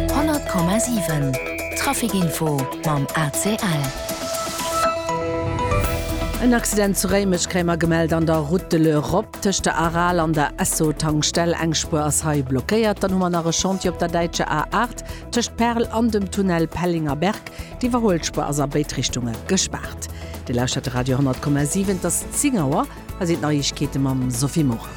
100,7 Trafic Info mam ACL. En Accident zu Réimech, Kréimer gemellt an der Route de l'Europe tëscht der Aral an der Esso-Tankstell. Eng Spuer ass hei blockéiert. Dann hu mer nach e Chantier op der däitscher A8 tëscht Perl an dem Tunnel Pellinger Berg. D'Iwwerhuelspuer ass a béid Richtunge gespaart. Dir lauschtert de Radio 10,7, et ass 10 Auer. Hei sinn d'Neiegkeete mam Sophie Morang.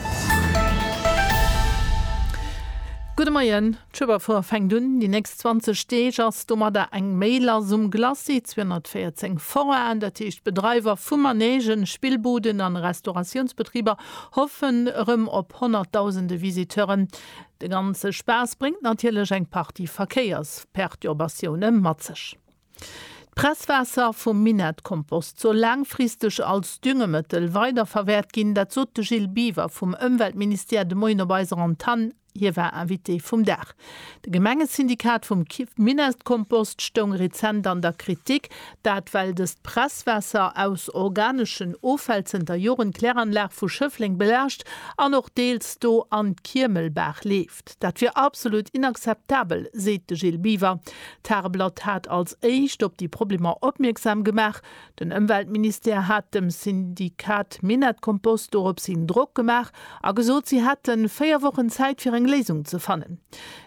Gudde Moien. D'Schueberfoire fänkt un. Déi nächst 20 Deeg ass domadder eng méi lass um Glacis. 214 Foraen, dat heescht Bedreiwer vu Manegen, Spillbuden an Restauratiounsbetriber, hoffen erëm op honnertdausende Visiteuren. De ganze Spaass bréngt natierlech eng Partie Verkéiersperturbatioune mat sech. D'Presswaasser vum Minettkompost soll laangfristeg als Düngemëttel weiderverwäert ginn. Dat sot de Gilles Biver vum Ëmweltministère de Moien op eiser Antann. Hie war Invité vum Dag. De Gemengesyndikat vum Minettkompost stoung rezent an der Kritik. Dat well dëst Presswaasser aus organeschen Offäll zënter Joren d'Kläranlag vu Schëffleng belaascht an och deels do an d'Kiemelbaach leeft. Dat wier absolut inakzeptabel, seet de Gilles Biver. D'Tageblatt hat als éischt op déi Problemer opmierksam gemaach. Den Ëmweltministère hat dem Syndikat Minett-Kompost dorops hin Drock gemaach a gesot, si hätte véier Wochen Zäit fir eng Léisung ze fannen.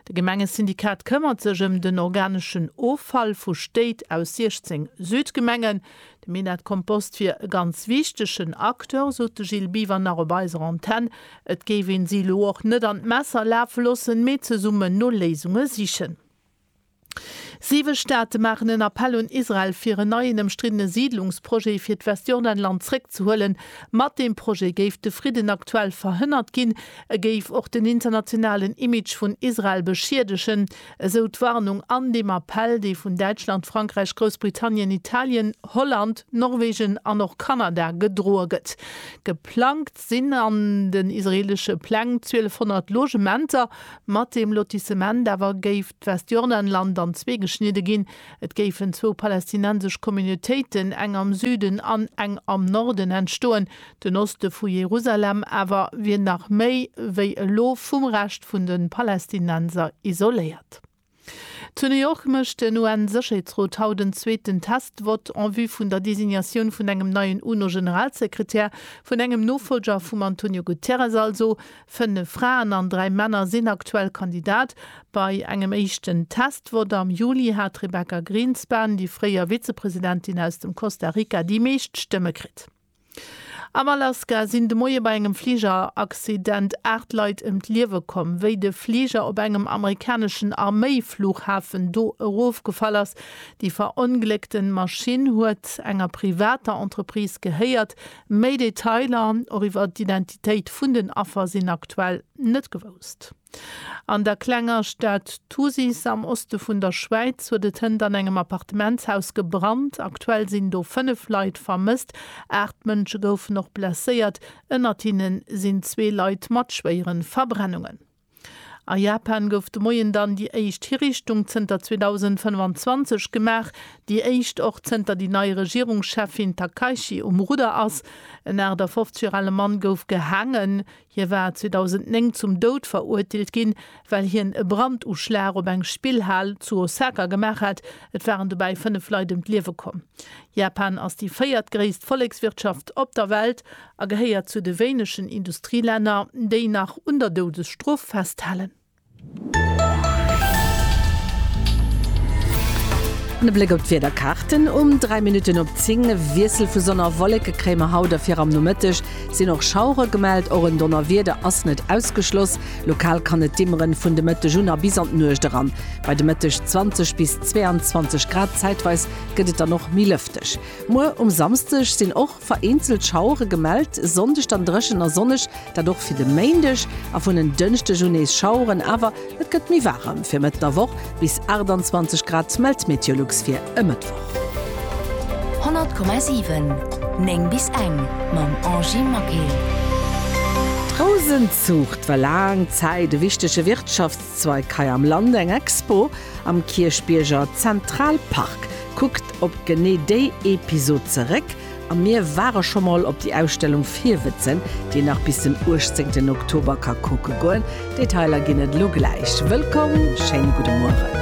De Gemengesyndikat këmmert sech ëm den organeschen Offall vu Stéit aus 16 Südgemengen. De Minett Compost wier e ganz wichtegen Acteur, sot de Gilles Biwer nach op eiser Antenn. Et géif een si elo och net an d'Messer lafe loossen, mee zesummen no Léisunge sichen. Siwe Staate maachen en Appell un Israel, fir en neien ëmstriddene Siidlungsprojet fir d'Westjordanland zréckzehuelen. Mat deem Projet géif de Fridden aktuell verhënnert ginn. E géif och den internationalen Image vun Israel beschiedegen. esou d'Warnung an deem Appell, dee vun Däitschland, Frankräich, Groussbritannien, Italien, Holland, Norwegen an och Kanada gedroe gëtt. Geplangt sinn an den israeelesche Pläng 1.200 Logementer. Mat deem Lotissement awer géif d'Westjordanland an zwee geschnidde ginn. Et géifen zwou palästinensesch Communautéiten, eng am Süden an eng am Norden, entstoen, Den Oste vu Jerusalem awer wier nach méi wéi elo vum Rescht vun de Palästinenser isoléiert. Zu New York mécht den UN-Sécherheetsrot haut en zweeten Test-Vott en vue vun der Designatioun vun engem neien UNO-Generalsekretär, vun engem Nofollger vum Antonio Guterres also. Fënnef Fraen an dräi Männer sinn aktuell Kandidat. Bei engem éischten Test-Vott am Juli hat d'Rebecca Grynspan, déi fréier Vizepresidentin aus dem Costa Rica, déi meescht Stëmme kritt. Am Alaska sinn de Moie bei engem Fligeraccident 8 Leit ëm d'Liewe komm, wéi de Fliger op engem amerikaneschen Arméifluchhafen do erofgefall ass. Déi verongléckte Maschinn huet enger privater Entreprise gehéiert. Méi Detailer, och iwwer d'Identitéit vun den Affer, sinn aktuell net gewousst. An der klenger Stad Thusis am Oste vun der Schwäiz huet et hënt an engem Appartementshaus gebrannt. Aktuell sinn do 5 Leit vermësst. Aacht Mënsche goufen och blesséiert, ënnert hinne sinn zwee Leit mat schwéiere Verbrennungen. A Japan gouf de Moien dann déi éischt Hiriichtung zënter 2025 gemaach, déi éischt och zënter déi nei Regierungscheffin Takaichi um Rudder ass. En 58 Joer ale Mann gouf gehaangen. Hie war 2009 zum Doud verurteelt ginn, well hien e Branduschlag op eng Spillhal zu Osaka gemaach hat. Et waren dobäi fënnef Leit ëm d'Liewe komm. Japan ass déi véiertgréisst Vollekswirtschaft op der Welt a gehéiert zu de wéinegen Industrielänner, déi nach un der Doudesstrof festhalen. An e Bléck op d'Wiederkaarten um 3 Minutten op 10. E Wiessel vu Sonn a Wolleke kréie mer haut a fir am Nomëtteg sinn och Schauere gemellt. Och en Donnerwieder ass net ausgeschloss. Lokal kann et dimmeren vun de Mëtteg un a bis an d'Nuecht eran. Bei de Mëtteg 20 bis 22 Grad, zäitweis gëtt et dann och méi lëfteg. Muer um Samsdeg sinn och. Vereenzelt Schauere gemellt, Sonndeg dann dréchen a sonneg, dat och fir de Méindeg, a vun en Dënschdeg un nees Schaueren, awer et gëtt méi waarem. Fir Mëtt der Woch bis 28 Grad mellt d'Meteolux fir e Mëttwoch. 100,7 9 bis eng mam Angie Maquil. D'Rousenzuucht war laang Zäit e wichtege Wirtschafts-, Zweig hei am Land eng Expo am Kierchbierger Zentralpark. Kuckt op genee déi Episod zeréck a mir ware scho mol op déi Ausstellung Virwëtzen, déi nach bis den 18 Oktober ka kucke goen. Detailer ginn et elo gläich. Wëllkomm, schéine gudde Mueren.